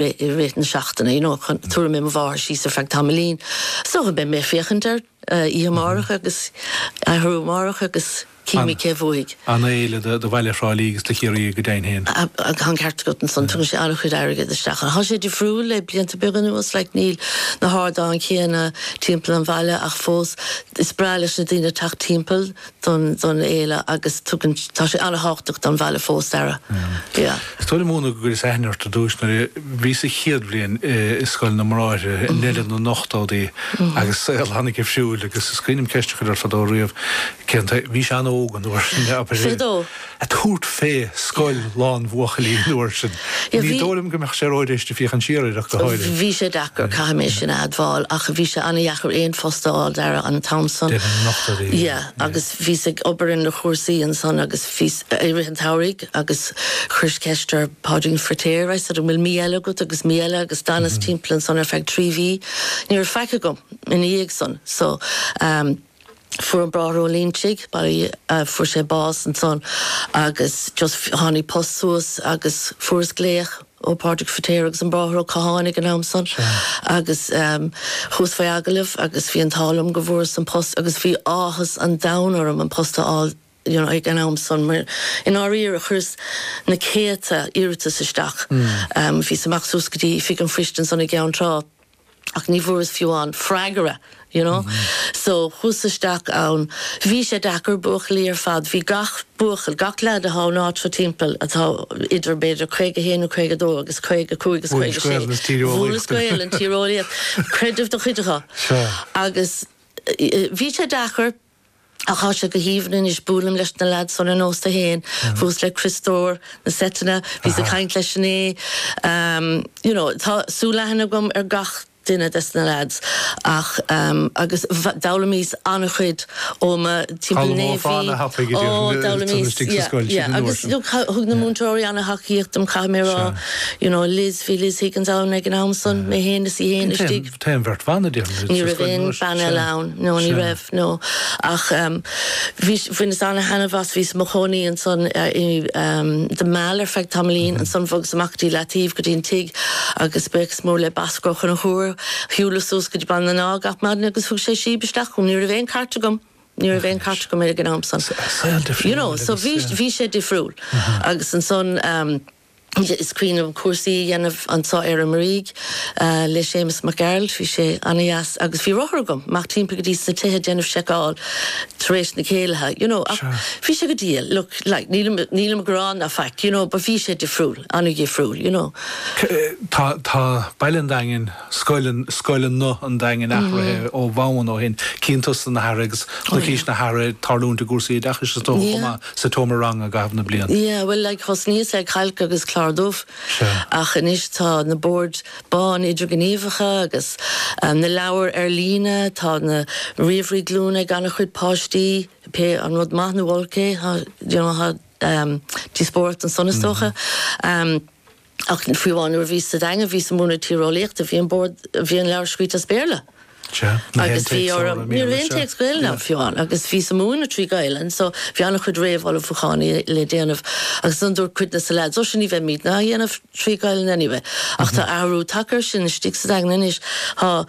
i rith na seachtaine you know chun tabharfaidh mé mo mháthair síos ar feadh tamaillín so beidh mé ag féachaint air oíche amárach agus athrú amárach agus cífimid cé a bhuafaidh. An fhéile do Bhaile Thrá Lí agus do Chiarraí go deimhin féin. Tá an ceart agat ansan tugann sé an-chuid airgid isteach ach tá sé difriúil le blianta beaga anuas like níl na hardáin chéanna timpeall an bhaile ach fós is breá leis na daoine teacht timpeall don fhéile agus tugann, tá sé an-thábhachtach don bhaile fós, Dara. Yeah. Is dóigh liom, Úna, go gcuireas aithne ort ar dtús nuair a bhíos sa chéad bhliain i Scoil na mBráithre i ndeireadh na n-ochtóidí agus saol tháinig ar siúil agus is cuimhin liom ceist a chur ort fadó riamh, cén taobh, bhís an-óg an uair sin, oibre. 22? ag tabhairt fé scoil lán buachaillí an uair sin. Ní dóigh liom go mbeadh sé ró-éasca ag féachaint siar air ach go háirithe. Bhí sé deacair, caithfidh mé sin a admháil, ach bhí sé an-dheacair aon phost a fháil, Dara, an t-am san. Deireadh na n-ochtóidí a bhí ann. Yeah, agus bhíos ag obair ar na cúrsaí ansan agus bhíos, i rith an tsamhraidh agus chuireas ceist ar Páidrín Firtéar, I said an bhfuil mí eile agat agus mí eile agus d'fhanas timpeall ansan ar feadh trí mhí, ní raibh faic agam ina dhiaidh san. So, eh. Fuair an Bráthair Ó Loingsigh báí, fuair sé bás ansan agus just tháinig post suas agus fuaireas glaoch ó Pádraig Firtéar agus an Bráthair Ó Catháin ag an am san agus chuas faoi agallamh agus bhí an t-ádh liom go bhfuaireas an post agus bhí áthas an domhain orm an post a fháil you know ag an am san mar i ndáiríre chuireas na céadta iarratas isteach, bhíos ag imeacht suas go dtí Oifig an Phoist ansan i gCeann Trá. ach ní bhfuaireas fiú aon freagra you know so chuas isteach ann bhí sé deacair buachaillí ar fad bhí gach buachaill gach leaid atá san áit seo timpeall atá idir b'fhéidir 51 nó 52 agus 55 agus 56 mhúineas Gaolainn tíreolaíocht creideamh do chuid acu agus bhí sé deacair Ach tá sé go haoibhinn anois, buailim leis na leaids óna n-ósta féin, thuas le Criostóir, na seiteanna, bhíos ag caint leis inné, you know, tá súilaithne agam ar gach duine des na leaids ach agus d'fhoghlaimís an-chuid ó mo timpeall Naomh Mhí, oh d'fhoghlaimíos, yeah, yeah agus look, thug na múinteoirí an-tacaíocht dom, caithfidh mé a rá, you know, Liz, bhí Liz Higgins ann ag an am san, mé féin is í féin istigh. Tá an bheirt bhan a déanann iad sa scoil an uair. Ní raibh aon bhean eile ann. Sea. No, ní raibh, no. Ach em, bhís, bhaineas ana-thaitneamh as, bhíos i mo chónaí ansan eh, i em, The Mall ar feadh tamaillín, ansan bhogas amach go dtí Leataoibh, go dtí an tigh agus buíochas mór le Bosco Ó Conchúir, shiúlas suas go dtí Baile na nÁith gach maidin agus thug sé síob isteach chugam, ní raibh aon cairt agam, ní raibh aon cairt agam ar ag an am san. Sea, saol difriúil. You know, so agus bhís, sea. bhí sé difriúil. Agus ansan em. Is cuimhin liom cúrsaí a dhéanamh anso ar an Muirígh le Séamus Mac Gearailt. Bhí sé ana-dheas agus bhí rothar agam, amach timpeall go dtí sna tithe déanamh seiceáil tar éis na céilithe, you know, ach bhí sé go diail, look, like, nílim, nílim ag gearán ná faic, you know, but bhí sé difriúil, ana-dhifriúil, you know. Tá, tá, Baile an Daingin Scoileanna an Daingin athraithe ó bhonn ó shin, cinnte tá san athraithe agus chonaicís na hathruithe ag tarlúint i gcúrsaí oideachais is dócha chomh maith sa tseomra ranga i gcaitheamh na bliana. Yeah bhuel like thosnaíos le cailc agus clár dubh ach anois tá na boird bán idirghníomhacha agus na leabhair ar líne, tá na ríomhairí glúine ag an-chuid páistí, pé an rud maith nó olc é tá you know tá díospóireacht ansan is dócha. Ach fiú amháin nuair a bhíos sa Daingean, bhíos ag múineadh tíreolaíochta, bhí an bord, bhí an leabhar scríte as Béarla. Agus bhí, ní raibh aon téacs Gaelainne fiú amháin, agus bhíos ag múineadh trí Ghaelainn, so bhí an-chuid réamhullmhúcháin i, le déanamh. Agus ansan dúirt cuid de sna leaids, ó sea, ní bheimidne á dhéanamh trí Ghaelainn anyway. Ach tá athrú tagtha ar sin istigh sa Daingean anois, tá,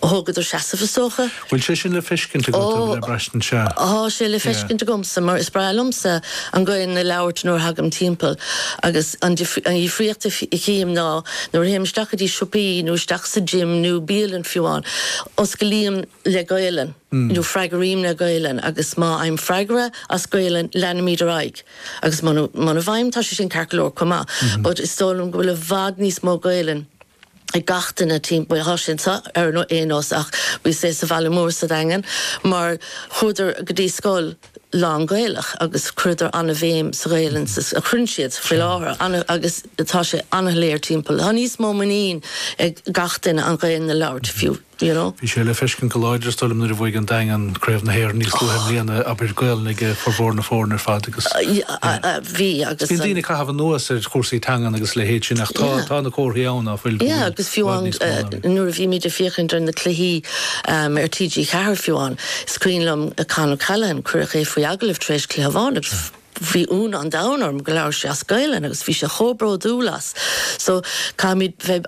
thógadar seasamh is dócha, Bhfuil sé sin le feiscint agat, nó le braistint? Sea. Tá sé le feiscint agamsa, mar is breá liomsa an Gaelainn a labhairt nuair a thagaim timpeall, agus an difríocht a chím ná, nuair a théim isteach go dtí siopaí, nó isteach sa gym, nó bialann fiú amháin, oscailím le Gaelainn, nó freagraím le Gaelainn, agus má fhaighim freagra as Gaelainn, leanaimid ar aghaidh, agus muna bhfaighim, tá sé sin ceart go leor chomh maith, but is dóigh liom go bhfuil i bhfad níos mó Gaelainn, ag gach duine timpeall. Tá sé anseo ar aon nós ach bhí sé sa bhaile mór sa Daingean mar chuadar go dtí scoil lán-Ghaelach agus cuireadar an-bhéim sa Ghaelainn a chuireann siad faoi láthair agus tá sé an-léir timpeall. Tá níos mó muinín ag gach duine an Ghaelainn a labhairt fiú. Bhí sé le feiscint go láidir, is dóigh liom, nuair a bhuaigh an Daingean Craobh na hÉireann níos luaithe i mbliana, abair, Gaolainn ag formhór na foirne ar fad agus bíonn daoine ag caitheamh anuas ar chúrsaí teangan agus a leithéid sin ach tá tá na comharthaí ann ná fuil. Yeah agus fiú amháin nuair a bhímid ag féachaint ar na cluichí ar TG4 fiú amháin, is cuimhin liom Con O'Callaghan, cuireadh é faoi agallamh tar éis cluiche amháin agus bhí ionadh an domhain orm go labhair sé as Gaolainn agus bhí sé chomh bródúil as. So caithfimid bheith